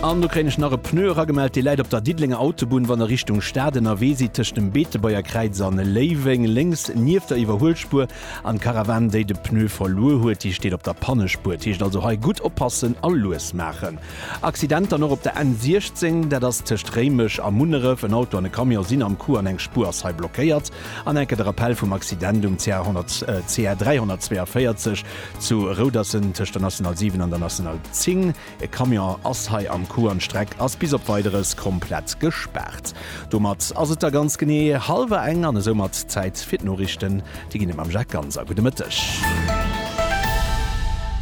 An do kréien ech nach e Pneu eragemellt, dee läit op der Diddelenger Autobunn, wann der Richtung Stad ënnerwee sidd, tëscht dem Beetebuerger Kräiz a Léiweng, lénks nieft der Iwwerhuelspuer. An d'Caravane, déi de Pneu verluer huet, déi steet op der Pannespuer. Et heescht also hei gutt oppassen a lues maachen. Accident dann och op der N 16, dat ass tëscht Réimech a Munneref. En Auto an e Camion sinn am Coup an eng Spuer ass hei blockéiert. An enke de Rappell vum Accident um CR 342. Zu Rouderssen tëscht der National 7 an der National 10, e Camion ass hei am Coup an d'Streck ass bis op Weideres komplett gespaart. Domat ass et da ganz genee hallwer eng an esoumat Zäit fir d'Noriichten. Déi ginn et mam Jacques Ganser. Gudde Mëtteg.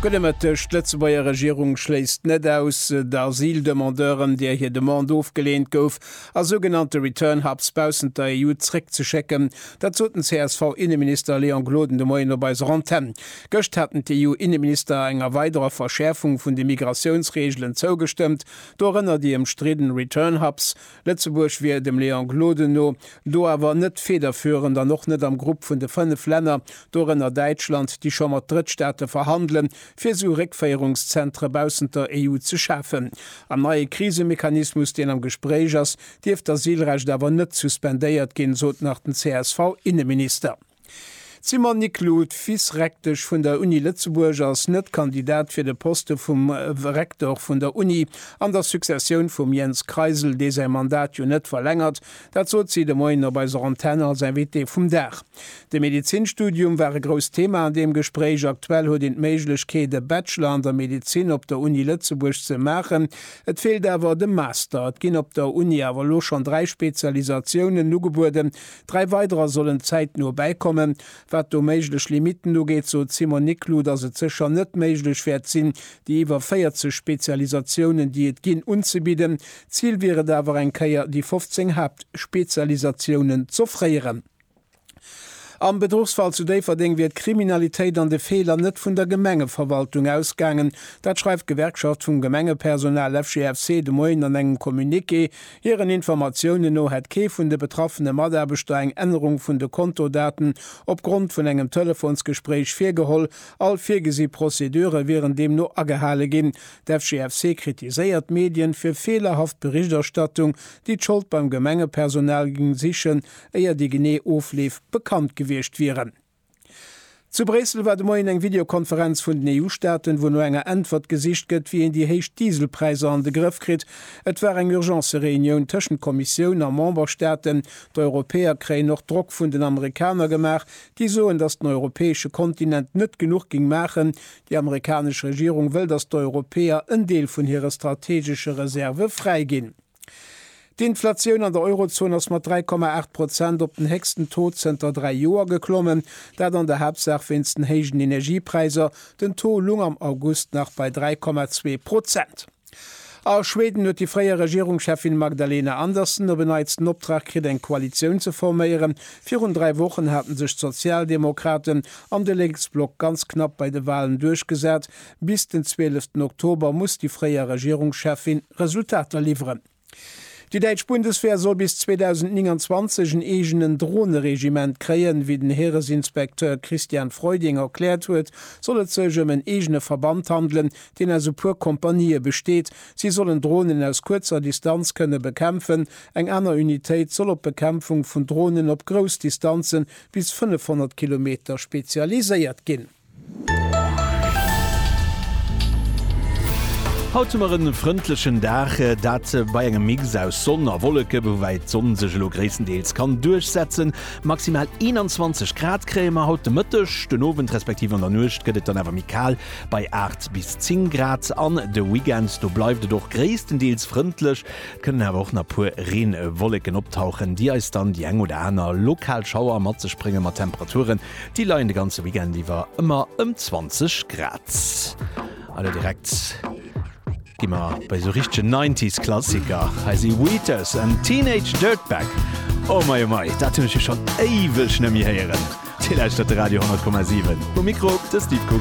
Gudde Mëtteg. D'Lëtzebuerger Regierung schléisst net aus, d'Asyldemandeuren, deer hir Demande ofgeleent gouf a sougenannte Return Hubs baussent der EU zréckzeschécken, Dat sot den CSV-Inneminister Léon Gloden de Moien op eiser Antenn. Gëscht haten d'EU-Inneminister enger weiderer Verschäerfung vun de Migratiounsreegelen zougestëmmt, dorënner déi ëmstridden Return Hubs. Lëtzebuerg wier dem Léon Gloden no do awer net federführend an och net am Grupp vun de fënnef Länner, dorënner Däitschland, déi scho mat Drëttstaate verhandelen, fir esou Réckféierungszentre baussent der EU ze schafen. Am neie Krisemechanismus, deen am Gespréich ass, dierf d'Asylrecht awer net suspendéiert ginn, sot nach den CSV-Inneminister. D'Simone Niclou, Vice-Rektesch vun der Uni Lëtzebuerg, ass net Kandidat fir de Poste vum Rektor vun der Uni an der Successioun vum Jens Kreisel, dee säi Mandat jo net verlängert. Dat sot si de Moien op eiser Antenn als Invitée vum Dag. De Medezinstudium war e grousst Thema an deem Gespréich. Aktuell huet een d'Méiglechkeet, e Bachelor an der Medezin op der Uni Lëtzebuerg ze maachen. Et feelt awer de Master. Et ginn op der Uni awer elo schonn dräi Spezialisatiounen ugebueden. Dräi weiderer sollen zäitno bäikommen. Wat do méiglech Limitten ugeet, sot d'Simone Niclou, datt et sécher net méiglech wäert sinn, déi iwwer 40 Spezialisatiounen, déi et ginn, unzebidden. Zil wier et awer, eng Kéier déi 15 Haaptspezialisatiounen z'offréieren. Am Bedruchsfall zu Déifferdeng wier d'Kriminalitéit an de Feeler net vun der Gemengeverwaltung ausgaangen. Dat schreift d'Gewerkschaft vum Gemengepersonal FGFC de Moien an engem Communiqué. Hiren Informatiounen no hätt kee vun de betraffene Mataarbechter eng Ännerung vun de Kontodaten opgrond vun engem Telefonsgespréich virgeholl. All virgesi Prozedure wieren deemno agehale ginn. D'FGFC kritiséiert d'Medien fir feelerhaft Berichterstattung, déi d'Schold beim Gemengepersonal géing sichen. éier déi genee Ofleef bekannt gewiescht wieren. Zu Bréissel war de Moien eng Videokonferenz vun den EU-Staaten, wou no enger Äntwert gesicht gëtt, wéi een déi héich Dieselpräisser an de Grëff kritt. Et war eng Urgence-Reunioun tëschent Kommissioun a Memberstaaten. D'Europäer kréien och Drock vun den Amerikaner gemaach, déi soen, datt den europäesche Kontinent net genuch géing maachen. Déi amerikanesch Regierung wëll, datt d'Europäer en Deel vun hire strategesche Reserve fräiginn. D'Inflatioun an der Eurozon ass mat 3,8 Prozent op den héchsten Taux zënter dräi Joer geklommen, dat an der Haaptsaach wéinst den héijen Energiepräisser. Den Taux lung am August nach bei 3,2 Prozent. A Schweden huet déi fréier Regierungscheffin Magdalena Andersson op en Neits den Optrag kritt, eng Koalitioun ze forméieren. Virun dräi Wochen haten sech d'Sozialdemokraten an de Lénksblock ganz knapp bei de Walen duerchgesat, Bis den zwieleften Oktober muss déi fréier Regierungscheffin Resultater liwweren. Déi däitsch Bundeswehr soll bis 2029 en eegenen Droneregiment kréien. Wéi den Heeresinspekteur Christian Freuding erkläert huet, soll et sech ëm en eegene Verband handelen, deen aus e puer Kompanië besteet. Si sollen Dronen aus kuerzer Distanz kënne bekämpfen. Eng aner Unitéit soll op d'Bekämpfung vun Dronen op grouss Distanzen, bis 500 Kilometer, spezialiséiert ginn. Haut hu mer en frëndlechen Dag, dat bei engem Mix aus Sonn a Wolleke, woubäi d'Sonn sech elo gréisstendeels kann duerchsetzen. Maximal 21 Grad kréie mer haut de Mëtteg, den Owend respektiv an der Nuecht gëtt et dann awer méi kal bei 8 bis 10 Grad. An de Weekend, do bleift et och gréisstendeels frëndlech, et kënnen awer och nach puer Reenwolleken optauchen, déi eis dann déi eng oder aner lokal Schauer mat sech bréngen, mat Temperaturen Déi leien de ganze Weekend iwwer ëmmer ëm 20 Grad. An elo direkt gi mer bei esou richtegen Nineties Klassiker. Hei si Wheatus an Teenage Dirtbag. Oh mei oh mei, dat hunn ech jo schonn éiweg nemmi héieren. Dir lauschtert de Radio 10,7. Um Mikro de Steve Kugel.